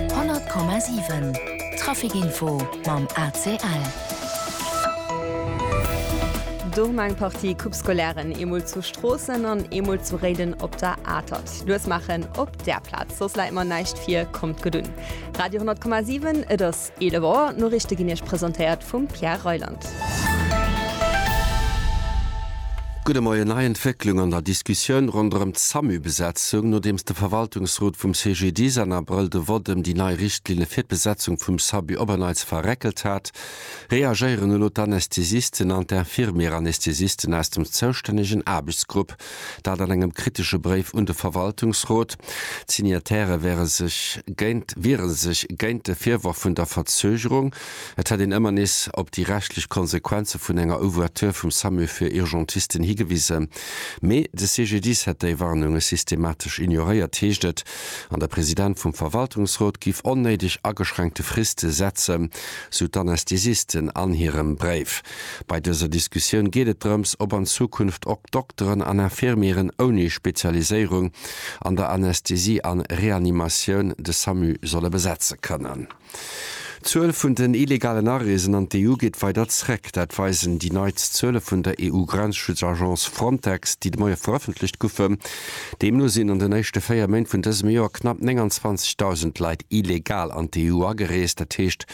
100,7 Traficinfo mam ACL. Domm eng Partie Coupe-scolaires, eemol zu Stroossen an eemol zu Réiden op der Atert. Lues maachen op där Plaz, soss läit mer näischt vir. Kommt gutt un. Radio 100,7, et ass. 11 Auer, d'Noriichte ginn Iech presentéiert vum Pierre Reyland. Gudde Moien, nei Entwécklung an der Diskussioun ronderëm d'Samu-Besetzung. Nodeems de Verwaltungsrot vum CGDIS an Abrëll de Vott ëm déi nei Richtlinne fir d'Besetzung vum SABU op en Neits verréckelt hat, reagéieren elo d'Anästhesisten an d'Infirmier-Anästhesisten aus dem zoustännegen Aarbechtsgrupp. Dat an engem kritesche Bréif un de Verwaltungsrot. D'Signataire wiere sech géint wiere sech géint de Virworf vun der Verzögerung. Et hätt een ëmmer nees op déi rechtlech Konsequenze vun enger Ouverture vum SAMU fir Urgentisten higewisen. Mee de CGDIS hätt déi Warnunge systematesch ignoréiert, heescht et. An de President vum Verwaltungsrot géif onnéideg ageschränkte Friste setzen, sou d'Anästhesisten an hirem Bréif. Bei dëser Diskussioun geet et drëms, ob an Zukunft och Dokteren an Infirmieren ouni Spezialiséierung an der Anästhesie an Reanimatioun de Samu solle besetze kënnen. D'Zuel vun den illegalen Areesen an d'EU geet weider zréck. Dat weisen déi neitst Zuele vun der EU-Grenzschutz-Agence Frontex, déi de Moie verëffentlecht goufen. Deemno sinn an den éischte véier Méint vun dësem Joer knapp 29.000 Leit illegal an d'EU agereest, dat heescht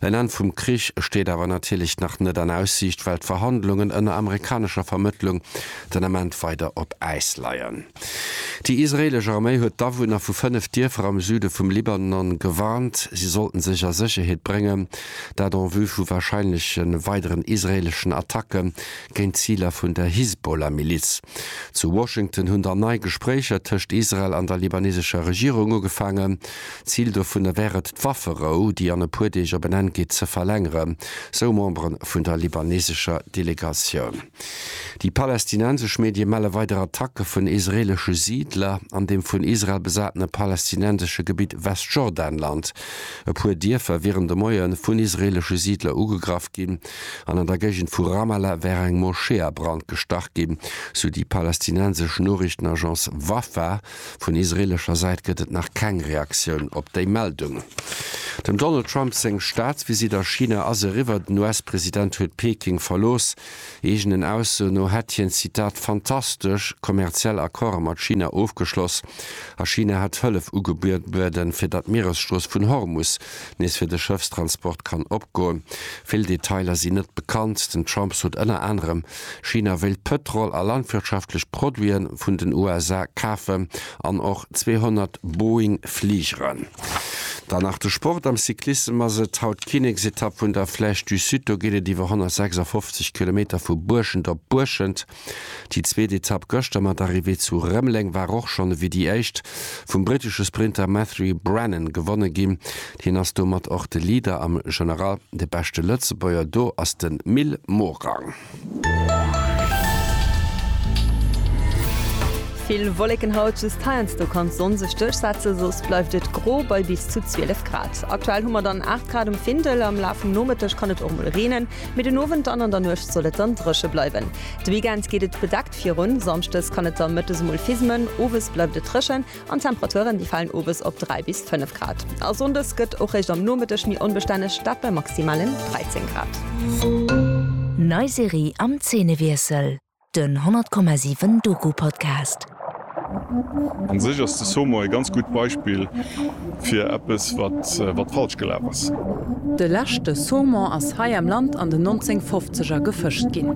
En Enn vum Krich steet awer natierlech nach net an Aussiicht, well d'Verhandlungen ënner amerikanescher Vermëttlung den Ament weider op Äis leien. Déi israeelesch Arméi huet d'Awunner vu fënnef Dierfer am Süde vum Libanon gewarnt, si sollten sech a Sécherheet bréngen, dat en vue vu warscheinleche weideren israeeleschen Attacke géint d'Ziler vun der Hisbollah-Miliz. Zu Washington hunn dann nei Gespréicher tëscht Israel an der libanesescher Regierung ugefaangen. Zil dovunner wär et d'Wafferou, déi an e puer Deeg op en Enn geet, ze verlängeren, sou Membere vun der libanesescher Delegatioun. Déi palästinensesch Medie melle weider Attacke vun israeelesche Siidler an dem vun Israel besatene palästinensesche Gebitt Westjordanland. E puer Dierfer wieren de Moie vun israeelesche Siidler ugegraff ginn an an der Géigend vu Ramallah wär eng Moschee a Brand gestach ginn, sou déi palästinensesch Noriichtenagence Wafa. Vun israeelescher Säit gëtt et nach keng Reaktioun op déi Meldung. Dem Donald Trump seng Staatsvisitt a China ass eriwwer. Den US-President huet Peking verlooss. Eegenen Aussoen no hätt hien, Zitat, fantastesch kommerziell Accorde mat China ofgeschloss a China hätt Hëllef ugebueden, fir datt d'Mieresstrooss vun Hormus nees fir de Schëffstransport kann opgoen. Vill Detailer sinn net bekannt. Den Trump sot ënner anerem, China wéilt Pëtrol a landwirtschaftlech Produiten vun den USA kafen an och 200 Boeing Fligeren. Dann nach de Sport, am Cyclissem ass et haut d'Kinneksetapp vun der Flèche du Sud. Do geet et iwwer 156 Kilometer vu Buerschent op Buerschent. Déi zweet Etapp gëschter mat Arrivée zu Rëmeleng war och schonn ewéi déi éischt vum britesche Sprinter Matthew Brennan gewonne ginn. Hien ass domat och de Leader am General De beschte Lëtzebuerger do ass de Mil Morang. Vill Wolleken haut, just heiansdo kann d'Sonn sech duerchsetzen, soss bleift et gro bei bis zu 12 Grad. Aktuell hu mer dann 8 Grad um Findel, am Laf vum Nomëtteg kann et och mol reenen, mee den Owend an an der Nuecht soll et dann dréche bleiwen. De Weekend geet et bedeckt virun, samschdes kann et da mëttes mol fismen, owes bleift et dréchen. An d'Temperaturen, déi falen owes op 3 bis 5 Grad. A Sonndes gëtt och réischt am Nomëtteg méi onbestänneg, dat bei maximalen 13 Grad. Nei Serie am Zeenewiessel, den 100,7 Doku Podcast. An sech ass de Somo e ganz gutt Beispill fir eppes wat falsch gelaf ass. De leschte Saumon ass hei am Land an den 1950er gefëscht ginn.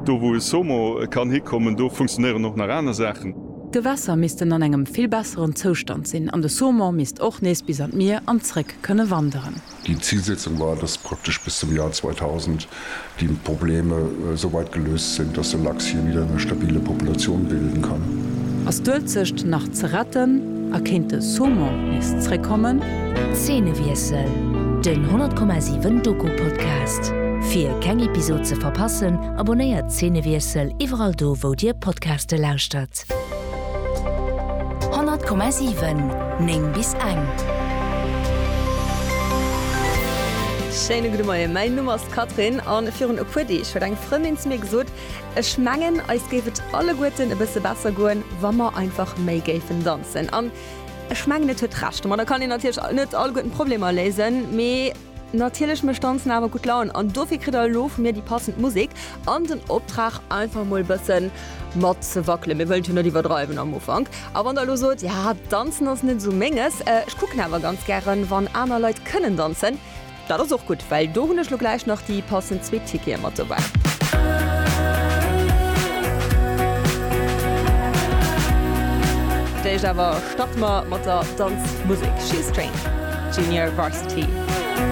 Do wou e Somo kann hikommen, do funktionéieren och nach aner Saachen. D'Gewässer missten an engem vill besseren Zoustand sinn an de Saumon misst och nees bis an d'Mier an zréck kënne wanderen. Déi Zilsetzung war, dass praktesch bis zum Joer 2000 déi Probleme sou weit geléust sinn, dass de Lachs hir wieder eng stabile Populatioun bilden kann. Ass d'Uelzecht nach ze retten a kéint de Saumon nees zréckkommen? Zeenewiessel, den 100,7 Doku-Podcast. Fir keng Episod ze verpassen, Abonnéiert Szenewiessel iwwerall do wou dir Podcaste lauschtert. 100,7 9 bis eng. Schéine gudde Moien, mäin Numm ass Catherine an virun e puer Deeg huet eng Frëndin zu mir gesot, Ech mengen, eis géif et alleguerten e bësse besser goen, wa mer einfach méi géifen danzen. An ech mengen, et huet Recht. Ma da kann een natierlech net alleguerten d'Problemer léisen, mee Natierlech mécht Danzen awer gutt Laun an dofir kritt der elo vu mir déi passend Musek an den Optrag einfach mol bëssen mat ze wackelen. Mir wëllen et jo net iwwerdreiwen am Ufank. A wann der elo sot, ja Danzen ass net esou menges, ech kucken awer ganz gären wann aner Leit kënnen danzen, dat ass och gutt, well do hunn ech elo gläich nach déi passend zwee Tickete mat dobäi. D'éischt awer starte mer mat der Danzmusek Shoestrain, Junior Varsity.